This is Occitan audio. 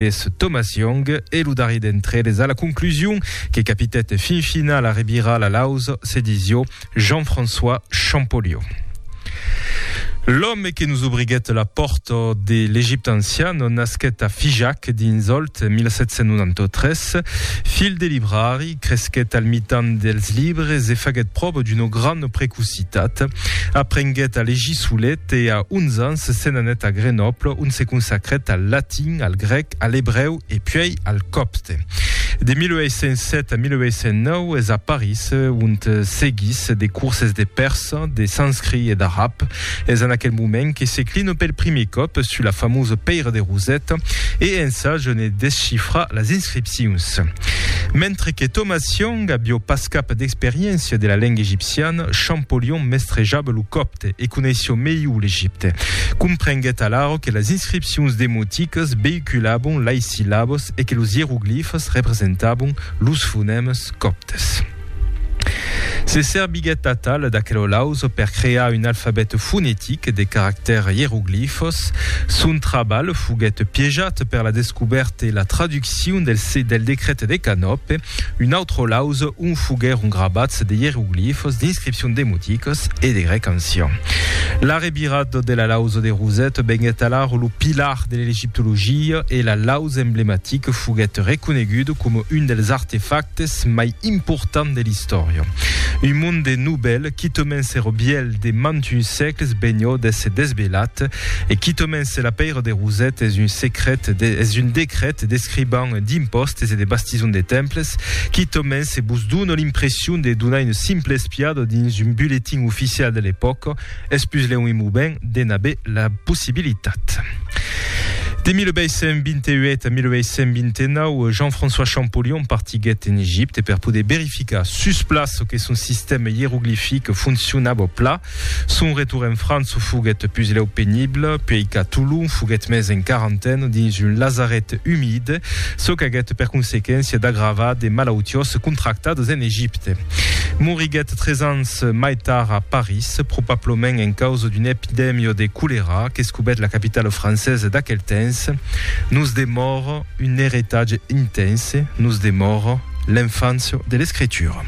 Es Thomas Young e lo darrier d'entre eles a la conclusion que capitèt fin finala a revirar la lausa, se disió Jean-François Champollion. L'òme que nos obriguèt la pòrta de l'Egipte ancian nasquèt a Figeac dins Òlt 1793, filh de librari, Cresquèt al mitan dels libres e faguèt pròva d'una grana precocitat. Aprenguèt a legir solet e a 11 ans se n'anèt a Grenòble ont se consacrèt al latin, al grèc, a l'ebrèu e puèi al còpte. De 1807 a 1809 es a París ont seguís de curses de pèrsa, de sanscrit e d'arab. Es en aquel moment que se cline pel primier còp sus la famosa pèira de Roset e ensaja ne descifrar las inscripcions. Mentre que Thomas Young avió pas cap d'experiéncia de la lenga egipciana, Champollion mestrejava lo còpte e coneissió melhor l'Egipte. Comprenguèt alara que las inscripcions demoticas veïculavon lais sillabas e que los ieroglifas representavan los fonèmas còptes. Se serviguèt atal d'aquelolaus per crear un alfabèt fonetic de caractèrs ieroglifos. Son trabalh foguèt piejat per la descobèrta e la traduccion del se del decret de Canope. Un autrolaus ont foguèron grabats de ieroglifos, d'inscripcions demoticas e de grèc ancian. L'arrevirat de la lausa de Rosette venguèt alara lo pilar de l'elegiptologia e la lausa L'os emblematic foguèt reconegut coma un dels artefactes mai importants de l'istòria. Un monde novèl, quitament ser vièlh de mantuns sègles, benhò d'èsser desvelat, e quitament se la pèira de Roset es un secret, es un decret d'escriban d'impòstes e de bastison de temples, quitament se vos dona l'impression de donar una simpla espiada dins un bulletin oficial de l'epòca, Es pus lèu un moment de n'aver la possibilitat. De 1828 a 1829, Jean-François Champollion partiguèt en Egipte per poder verificar sus plaç çò que son sistèma ieroglific foncionava o pla. Son retorn en França foguèt pus lèu penible, puèi qu'a Tolon foguèt mès en quarantena dins un lazaret umid, çò qu'aguèt per consequéncia d'agravar de malautiós contractadas en Egipte. Moriguèt tres ans mai tard a París, probablament en causa d'una epidèmia de colèra qu'escobèt la capitala francesa d'aquel temps. Nos demòra un eritatge intense, nos demòra l'enfància de l'escritura.